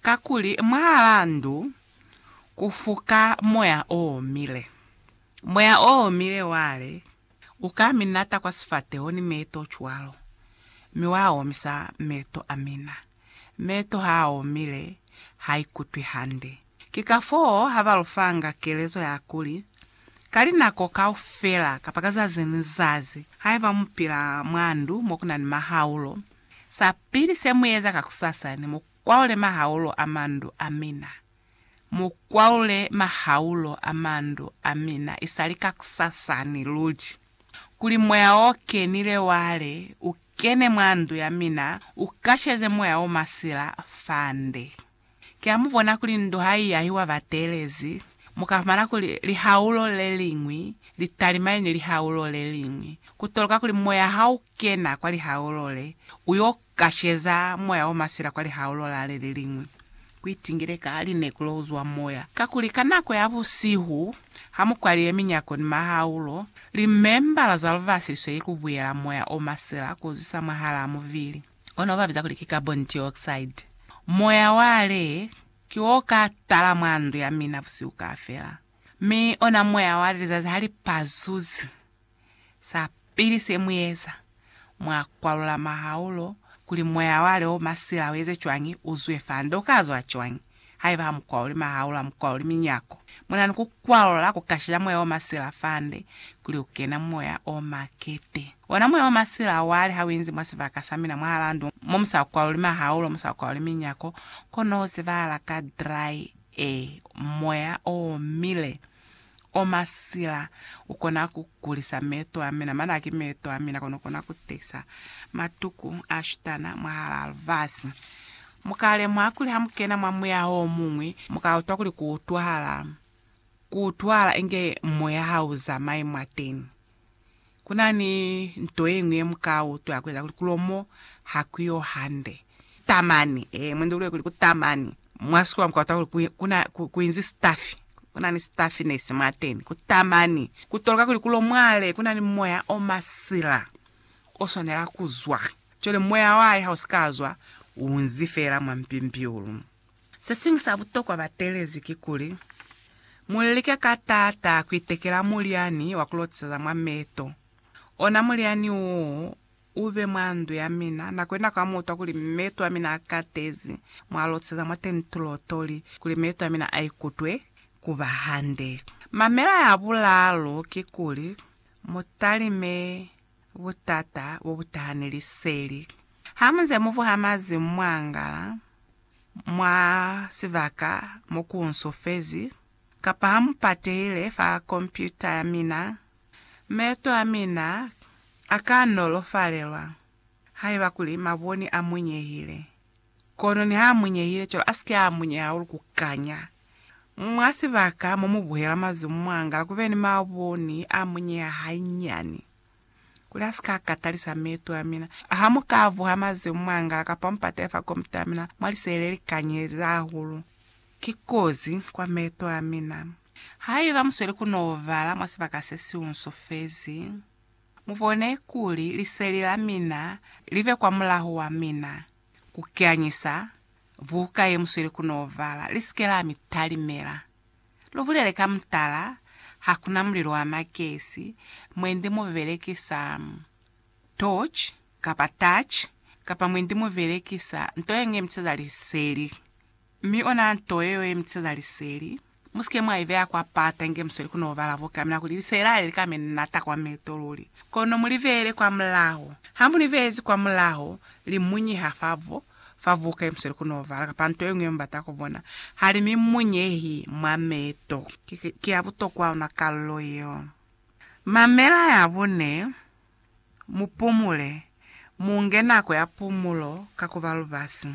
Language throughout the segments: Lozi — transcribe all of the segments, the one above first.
Kakuli mwahalaa ndu ku fuka moya o omile. Moya o omile wale u ka mi nata kwa sifateho ni meeto cwalo, mi wa omisa meeto a mina. Meeto ha a omile, ha ikutwi hande. Ki kafoo ha ba lu fanga kelezo ya kuli, Ka linako kaufela, kapa ka zazi ni zazi, haiba mu pila mwa ndu mo ku na ni mahaulo, sa pili se mu eza kakusasa ni mo Kwaule mahaulo a mandu a mina. Mu kwaule mahaulo a mandu a mina isali kakusasani luli, kuli moya o kenile wa le u kene mwa ndu ya mina, u kasheze moya o masila fande. Ki ha mu bona kuli ndu ha i yahiwa bateelezi, mu ka fumana kuli lihaulo le liñwi li talimane ni lihaulo le liñwi. Ku toloka kuli moya ha u kena kwa lihaulo le, u yo Kasheza moya omasila kwa lihaolo la le leliñwi. Kuitingile ka linekulo kuzwa moya, kakuli ka nako ya busihu, hamukwaliye minyako ni mahaolo, limembala za lubasi sweli kubuyela moya omasila kuzwisa mwahalaa mubili. Ona obabiza kuli ki carbon dioxide. Moya wa le, ki o ka tala mwa ndu ya mina busihu kaafela. Mi ona moya wa le lizazi halipazuzi. Sa pili se mu eza, mwa kwalula mahaulo kuli moya wa leo masila u eze cwañi, u zwe fa nde u ka zwa cwañi. Haiba ha mu kwaluli mahaulo, ha mu kwaluli minyako. Muna ni ku kwalula ku ka shiza moya o masila fa nde, kuli u kena moya o makete. Ona moya o masila wali ha u inzi mwa sibaka sa mina mwahalaa ndu mo mu sa kwaluli mahaulo, mu sa kwaluli minyako, kono u zibahala ka dry air, moya o omile. O masila, u kona ku kulisa meeto a mina, mane a ki meeto a mina, kono u kona ku tehisa matuku a shutana mwahalaa lifasi. Mu ka lemuha kuli ha mu kena mwa muya o muñwi, mu ka utwa kuli ku utwahala, ku utwahala inge moya ha u zamayi mwateni. Ku na ni nto ye ñwi ye mu ka utwa kueza kuli kulo mo ha ku yo hande. Tamani, ee, mwendi ulule kuli ku tamani. Mwa sikuwa mu ka utwa kuli ku, ku na, ku, ku inzi sitafi. Ku na ni sitafinesi mwateni. Ku tamani. Ku toloka kuli kulo mwale ku na ni moya o masila o swanela ku zwa. Cwale moya wale ha u si ka zwa, u unzi feela mwa mpimpiulu. Se siñwi sa butokwa batelezi kikuli, mu like ka taata ku itekela mulyani wa ku lotiseza mwa meto. Ona mulyani wo u be mwa ndu ya mina, nako ni nako ha mu utwa kuli meto a mina a katezi, mwa lotiseza mwateñi tulotoli kuli meto a mina a ikutwe ku ba hande. Mamela ya bulaalu kikuli, mu talime butata bo bu taha ni liseli. Ha mu nze mu vuha mazimu mwa ngala, mwa sibaka mo ku nsufezi, kapa ha mu patehile fa kompyuta ya mina, meeto a mina a ka nolofalelwa haiba kuli maboni a munyehile. Kono niha a munyehile cwalo, a si ke a munyeha hahulu ku kanya. Mwa sibaka mo mu buhela mazumu, mwa ngala ku be ni maboni a munyeha hainyani. kuli a si ka katalisa meeto a mina. Ha mu ka vuha mazemu mwa ngala kapa mu patela fa kombi ta mina, mwa liseele li kanyezi hahulu. Ki kozi kwa meeto a mina. Haiba mu sweli ku n'o bala mwa sibaka se si unsufezi, mu bone kuli liseli la mina li be kwa mulaho wa mina, ku kanyisa buka ye mu sweli ku n'o bala, li si ke la mi talimela. Lu bulele ka mutala, ha ku na mulilo wa magesi mwendi mu belekisa torch kapa touch kapa mwendi mu belekisa nto ye ñwi ye mitiseza liseli. Mi ona nto yeo ye mitiseza liseli, mu si ke mwa i beya kwa pata inge mu sweli ku n'o bala buka, mina kuli liseli ha li li ka mi nata kwa meto luli. Kono mu li beele kwa mulaho. Ha mu li beezi kwa mulaho, li munyiha fa bo fa buka ye muselu ku novala kapa nto ye ñwi ye mubata ku bona. Ha li mi munyehi mwa mei to. Ki ya butokwa ona kalulo yeo. Mamela ya bune, Mu pumule, mu nge nako ya pumulo ka ku ba lubasi.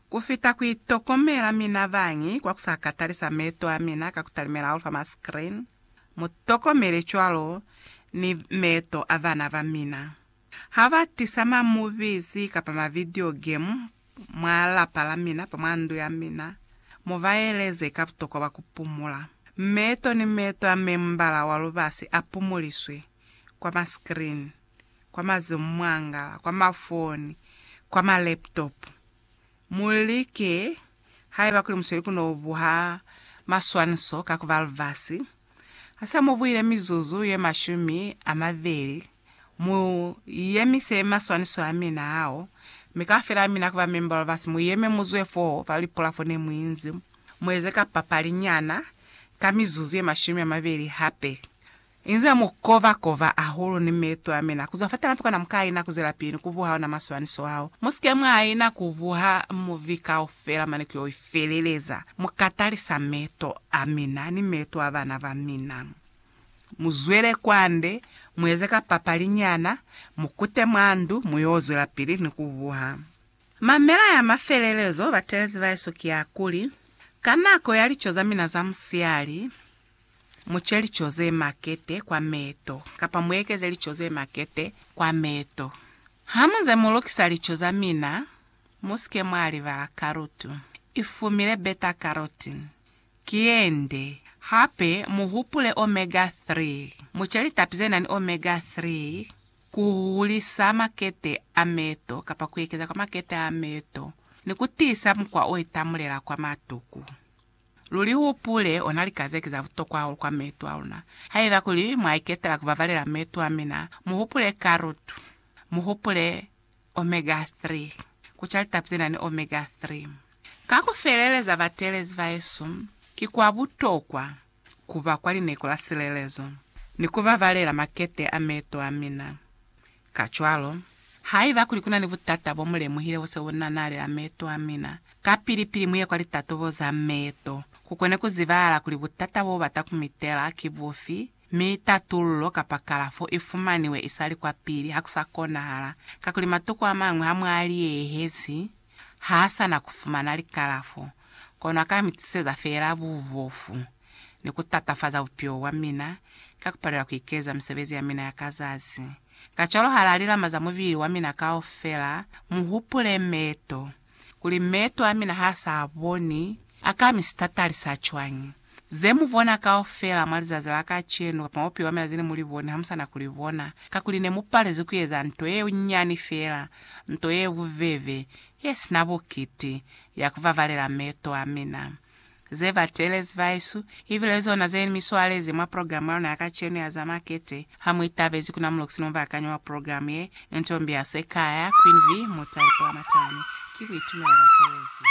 Ku fita ku itokomela mina bañi kwa ku sa ka talisa meto a mina ka ku talimela hahulu fa ma screen, mu tokomele cwalo ni meto a bana ba mina. Ha ba tisa ma movies kapa ma video game mwa lapa la mina kapa mwa ndu ya mina, mu ba eleze ka butokwa bwa ku pumula. Meeto ni meeto a membala wa lubasi a pumuliswe kwa ma screen, kwa mazimwangala, kwa mafoni, kwa ma laptop. Mu like, haiba kuli musweli ku no buha maswaniso ka ku ba lubasi, Ha se mu buile mizuzu ye mashumi a mabeli, mu yemise maswaniso a mina ao, mi kaufela mina ku ba memba wa lubasi mu yeme mu zwe foo fa lipulafo ne mu inzi, mu eze kapapali nyana ka mizuzu ye mashumi a mabeli hape. Inze mu kova kova ahulu ni meto a mina ku zwa fatana fo kana mu ka ina ku zwelapili ni ku vuha ona maswaniso ao. Mu si ke mwa ina ku vuha muvi kaufela. Fela mane kuyo ifeleleza. Mukatalisa meto amina ni meto a bana bamina. Muzwele kwande, mueze ka papali nyana, mukute mwa ndu, muyo zwelapili ni kubuha. Mamela ya mafelelezo, batelezi baesu, kiakuli, ka nako ya lico zamina za musiali, muce lico zemakete kwa meto, kapa muekeze lico zemakete kwa meto. Hamuze mulukisa lico zamina, Musike mwa libala karutu. I fumile beta carotene. Ki yende. Hape mu hupule omega 3. Mu ce litapi ze na ni omega 3 ku hulisa makete a meto kapa ku ekeza kwa makete a meto ni ku tiisa mukwa o itamulela kwa matuku. Lu li hupule, ona lika ze ki za butokwa hahulu kwa meto a luna. Haiba kuli mwa iketela ku babalela meto a mina, mu hupule karutu. Mu hupule Omega 3. Ku ca litapi ze na ni omega 3 ka ku feleleza bateelezi ba Yesu, ki kwa butokwa ku ba kwa lineko la silelezo ni ku babalela makete a meeto a mina. Kacwalo, haiba kuli ku na ni butata bo mu lemuhile bo se bu nanalela meeto a mina, kapili-pili mu ye kwa litatobo za meeto ku kone ku zibahala kuli butata bo ba ta ku mitela ki bufi Mi tatullo kapa kalafo i fumaniwe isali kwapili ha ku sa konahala, kakuli matoko a mañwi ha mwa a liyehezi, ha a sa na ku fumana likalafo, kono a ka mi tiseza feela bubofu ni ku tatafaza bupilo bwa mina ka ku palelwa ku ikeza misebezi ya mina ya ka zazi. Kacwalo ha la lilamaza mubili wa mina kaufela, mu hupule meto, kuli meto a mina ha sa boni, a ka mi sitatali sa cwañi? Ze mu bona kaufela mwa lizazi la kacenu kapa mwa bupilo bwa mina ze ne mu li boni ha mu sa na ku li bona, kakuli ne mu palezwi ku eza nto ye nyani feela, nto ye bubebe, ye si na bukiti, ya ku vavalela meto a mina. ze batelezi baesu, ibile zona ze mi swalezi mwa program ya luna ya kacenu ya za makete. Ha mu itabezi ku na muloxi no bakanyi wa program ye, nto mbi ya Sekaya, Queen V. Mutale Pulamatane. Ki buitumelo batelezi.